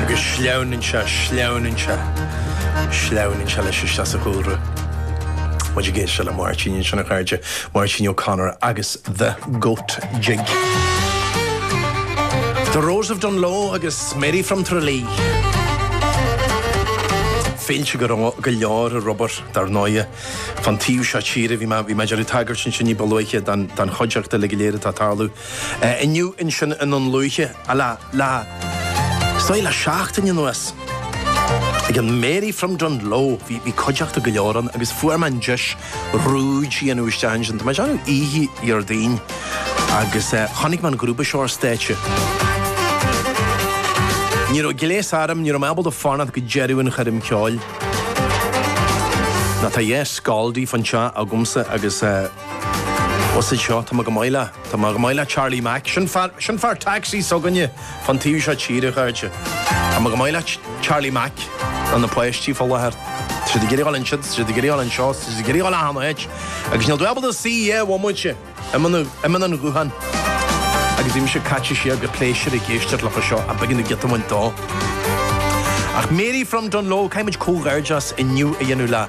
Agus sleamhnaíonn sé, sleamhnaíonn sé, sleamhnaíonn sé leis isteach sa chúlra. Muid ag éisteacht le Máirtín ansin, a chairde, Máirtín O'Connor agus The Goat Jig. The Rose of Dungloe agus Mary from Tralee. Féilte go leor ar obair, dar ndóighe. Fán taobh seo tíre, bhí mé, bhí mé ag iarraidh tagairt ansin ní ba luaithe don chuideachta uilig go léir atá ag tarlú. Inniu, ansin ní ba luaithe le is dóigh le seachtain anuas ag an Mary from Dungloe. Bhí cuideachta go leor ann agus fuair mé an deis rúid anuas isteach ansin. Tá mé ag déanamh oíche Dhéardaoin agus chonaic mé an grúpa seo ar stáitse. Ní raibh gléas orm, ní raibh mé ábalta fanacht go deireadh an choirm ceoil. Ná tá dhá scaldi fan seo agamsa agus Is iad seo, tá mé chomh maith le, tá mé chomh maith le Charlie Mac. Sin fear, sin fear taxi s'againne fán taobh seo tíre, chairde. Tá mé chomh maith le Charlie Mac. Ná na páistí fá láthair. Tá siad ag iarraidh dul ansiud, tá siad ag iarraidh dul anseo, tá siad ag iarraidh dul achan áit. Agus níl dúil do cúig bhomaite i mbun, i mbun an ghutháin. Agus bhí mise caite siar go pléisiúrtha ag éisteacht leo seo ach b'éigean domh giota a bhaint dó. Ach Mary from Dungloe, caithfimid comhghairdeas inniu a dhéanamh le.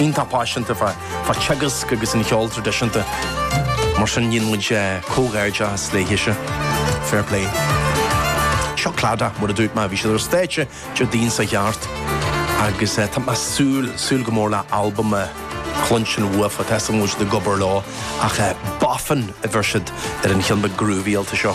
Iontach paiseanta fá teagasc agus an cheol traidisiúnta, mar sin déanann muid comhghairdeas léithe-se. Fair play. Seo Clada mar a dúirt mé, bhí siad ar stáitse Déardaoin seo a chuaigh thart agus tá mé ag súil, súil go mór le albam a chluinstin uafa, tá a fhios agam go bhfuil siad ag obair leo ach boffin a bheir siad ar an cheann beag groovyáilte seo.